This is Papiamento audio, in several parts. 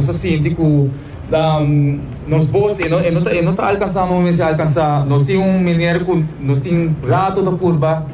Nos a sinti cu nos voz e no ta alcansando bo mester alcansa. Nos tin un meneer cu nos tin rato ta purba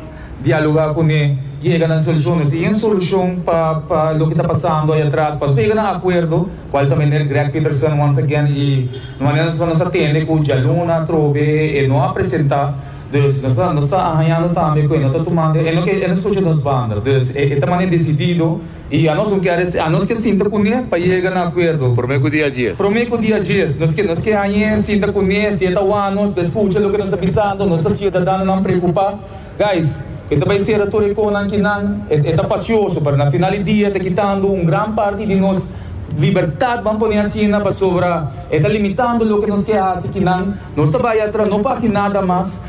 dialoga cu ne y yega na un solucion. Nos tin yen solucion pa loke ta pasando ay atras. Nos ta yega na acuerdo cual ta meneer Greg Peterson once again y na manera nos nos a tende cu dialuna atrobe e no a presenta. Dus nos ta hañando tambe cu e no ta tumando, e no scucha nos banda. Dus e ta manera decidido. I anos lo kere si anos ke sinta kuné pa yega na akuerdo. Promé ku dia dies. Promé ku dia dies. Nos ke nos ke hañ'é sinta kuné si e ta wak nos pa e skucha loke nos ta bisando, nos ta siudadanonan preokupá. Guys, ku e ta bai sera tur e konan kinan, e ta fasioso, pero na final di dia e ta kitando un gran parti di nos libertat, ban poné asina, pasobra e ta limitando loke nos ke hasi kinan. Nos ta bai atra, no pa hasi nada mas,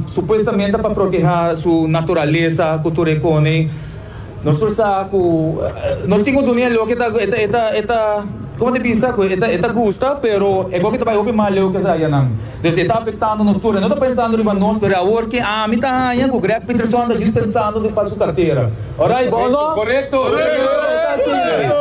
supuestamente pa protehá su naturalesa ku tur e kone. Nos por sa cu nos tin un dunia leu cu e ta, e ta, e ta, e ta, como te bisa cu e ta, e ta gusta, pero e gobi ta bay hopi mal leu cu esaki anan. Entonces e ta afectando nos tur. E no ta pensando riba nos, pero awor ke ami ta haña cu Greg Pietersoan ta jus pensando di pa su cartera. Alright, bo o no? Correcto!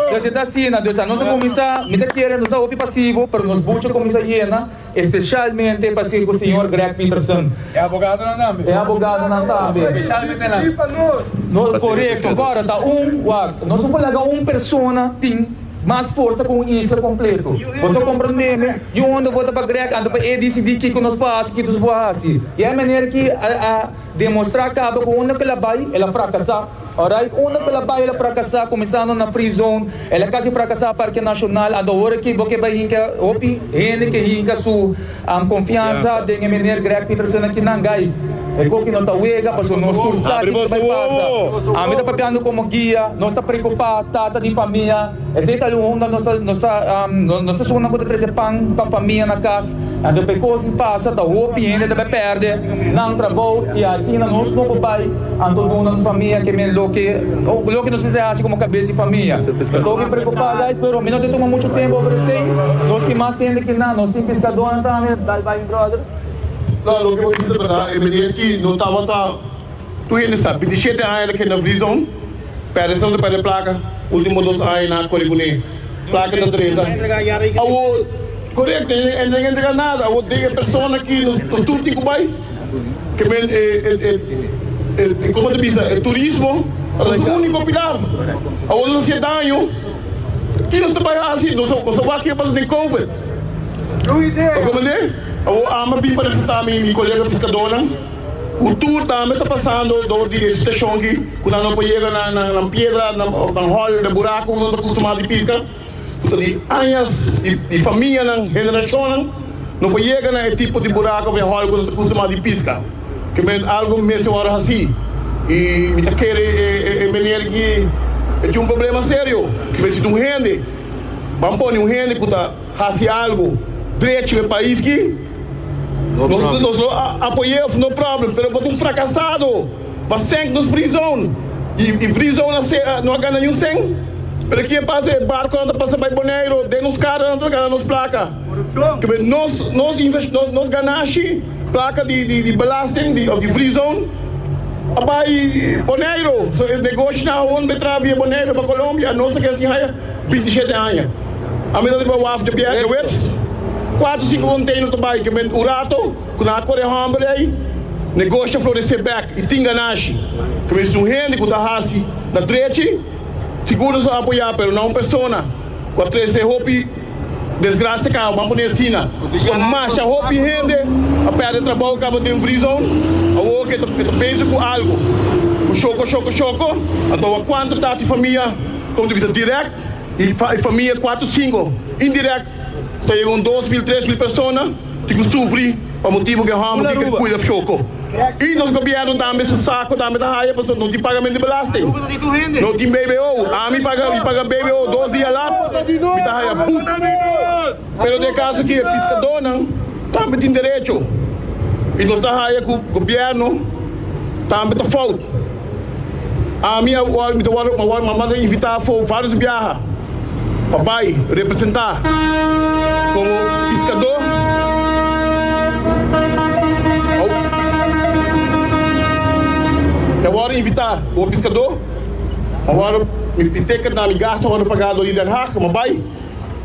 Entonces e ta asina. Entonces anos a cuminsa, mi ta kere nos ta hopi pasivo, pero nos buchi a cuminsa yena. Especialmente pa sirku Señor Greg Peterson. E abogadonan tambe. E abogadonan tambe. Specialmente nan. Di pa nos. No, korekto, kòrda ta un, wak, nos no por laga un persona tin mas forsa ku un isla kompleto. Boso komprondé mi? Yu hònde vota pa Greg anto pa e disidí kiko nos por hasi, kiko nos por hasi. I e manera ki e a demostrá kaba ku hònde ku el a bai, el a frakasá. Ora e unda pela baila frakasá kuminsando na free zone el a kasi frakasá Parke Nashonal anto awor aki bo ke bai hinka hopi hende ke hinka su konfiansa den e Meneer Greg Pietersen aki nan guys e koki no ta wega paso nos tur sa kiko ta bai pasa ami ta papiando komo guia nos ta prekupá tata di famia Esei ta algun hunda nos ta nos ta sunan cu ta trece pan pa famia na cas. Anto pa e cos di pasa ta hopi hende ta bay perde nan trabou y asina nos no por bay anto duna nos famia kimen loke loke nos bisa haci como cabes di famia. Mi ta hopi preocupa guys pero mi no ta tuma mucho tempo over esei. Nos tin mas hende ki nan, nos tin piscadonan tambe. Bye bye mi brother. Lo loke bo bisa berdad e meneer ki no tabata. Tur hende sa, binti shete aña ta keda na frison, perde esnan ta perde plaka, ultimo dos aña nan a kore kuné, plaka ta trenta. Awor, korekto, e no a entrega nada, awor den e persona ki nos tur tin ku bai, ke men e, koma ta bisa, e turismo ta nos úniko pilar, awor nos a hasié daño, ki nos ta bai hasi? Nos a wak ke pasa den Covid, ta komprendé? Awor, ama bin pa representá mi kolega piskadónan. Cu tur tambe ta pasando door di e situacion aki cu nan no por yega na nan piedra of nan hoyo den buraco cu nan ta custumá di pisca cu ta di añas di famianan, generacionnan no por yega na e tipo di buraco of e hoyo cu nan ta custumá di pisca cu men algo mester worde haci y mi ta kere e meneer aki e tin un problema serio cu mi necesita un hende ban pone un hende cu ta haci algo drechi na e pais aki. Nos lo apoy'é òf no problem, pero pa ta un frakasado, pa sènk nos prizon i prizon a ser no a gana niun sèn. Pero ke pasa e barko nan ta pasa bai Boneiru, den nos kara nan ta gana nos plaka. Kib'e nos nos ganashi, plaka di belasting òf di prizon a bai Boneiru. So e negoshinan awor no ta traha via Boneiru pa Colombia, nos ta kere sin haya. Binti shete aña a mira riba waf dje bier dje wes, kuater sinku konteiner ta bai kement un rato ku nan a kore e hòmber ei. Negosho a floresé bèk i tin ganashi ku mester un hende ku ta hasi na trechi. Sigur nos a apoyá pero nan un persona ku a trese hopi desgrasia kaba, ban pone asina. Kon masha hopi hende a pèrdè trabou kaba den Vrizoun, awor ku e ta pensa ku algu ku shoko shoko shoko a dòba kuantu tati famia. Punto di bista direct y famia cuatro cinco indirect ta yega un dos mil tres mil persona di cu sufri pa motibo cu e homber tin ke cuida fjoco y nos gobierno tambe su saco tambe ta haya pasobra no tin pagamento di belasting no tin bbo ami paga mi paga bbo dos dia lat mi ta haya put. Pero den e kaso di e piskadónan tambe tin derecho i nos ta haya ku gobièrnu tambe ta fout. Ami a wòrdu mi ta wòrdu a wòrdu manda invitá afó vários biaha pa bai representá komo piskadó mi a wòrdu invitá komo piskadó a wòrdu mi mi teken na mi gastu a wòrdu pagá dor di Den Haag pa mi bai.